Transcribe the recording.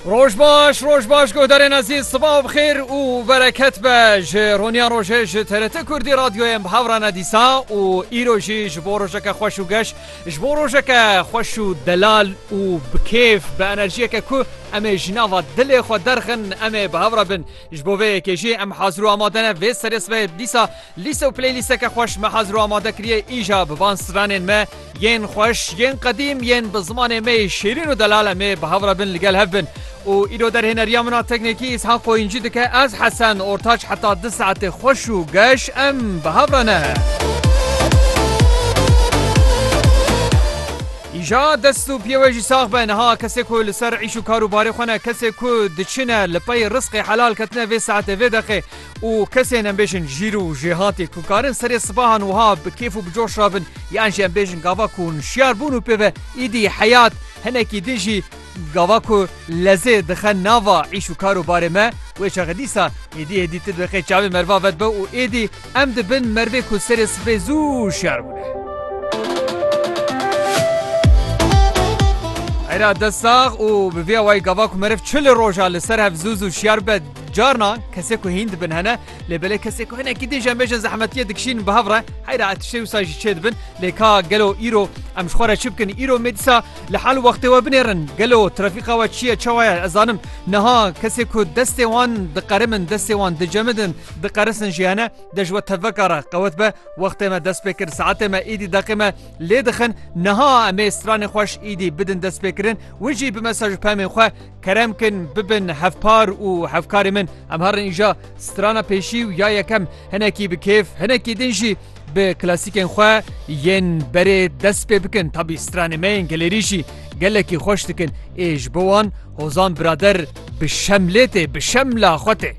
Roj baş roj baş guhdarên ezîz sibav xêr û bereket be ji roniya rojê ji TRT Kurdî radyoyên bi hevrane dîsa û îro jî ji bo rojeke xweş û geş ji bo rojeke xweş û delal û bi kêf bi enerjiyeke ku em ê ji nava dilê xwe derxin em ê bi hevra bin ji bo vê yekê jî em hazir û amade ne vê serê sibê dîsa Lîste û playlîsteke xweş me hazir û amade kiriye îja bi van stranên me yên xweş, yên qedîm, yên bi zimanê me yê şêrîn û delal em ê bi hev re bin li gel hev bin. Û îro derhêneriya min a teknîkî Îshan Qoyîncî dike ez Hesen Ortaç heta du saetê xweş û geş em bi hev re ne. Îja dest û piyê we jî sax be niha kesê ku li ser îş û kar û barê xwe ne kesê ku diçine li pey risqê helal ketine vê saetê vê deqê û kesên em bêjin jîr û jêhatê ku karin serê sibahan wiha bi kêf û bi coş re bin yan jî em bêjin gava ku hûn şiyar bûn û pê ve îdî heyat hinekî din jî gava ku lezê dixe nava îş û kar û barê me wê çaxê dîsa êdî êdî ti diqê çavê merva ve dibe û êdî em dibin mervê ku serê sibê zû şiyar bûne. Era dest sax û bi vê awayî gava ku meriv çil roja li ser hev zû zû şiyar bibe Carna kesê ku hîn dibin hene lê belê kesê ku hinekî din jemê jin zehmetiye dikişînin bi hev re heyra etişê wisa jî çê dibin lê ka gelo îro em ji xwe re çi bikin îro mê dîsa li hal wextê we binêrin gelo trafîqa we çiye çawa ye ez zanim niha kesê ku destê wan diqerimin destê wan dicemidin diqerisin jî hene de ji we teveka re qewet be wextê me dest pê kir saetê me îdî deqê me lê dixin niha em ê stranê xweş îdî bidin destpêkirin win jî bime ser ji pemên xwe Kerem kin bibin hevpar û hevkarê min. Em herin îja strana pêşî û ya yekem hinekî bi kêf, hinekî din jî bi klasîkên xwe yên berê dest pê bikin. Tabî stranê me yên gelêrî jî gelekî xweş dikin. Ê ji bo wan Hozan birader bi şemlê tê, bi şemla xwe tê.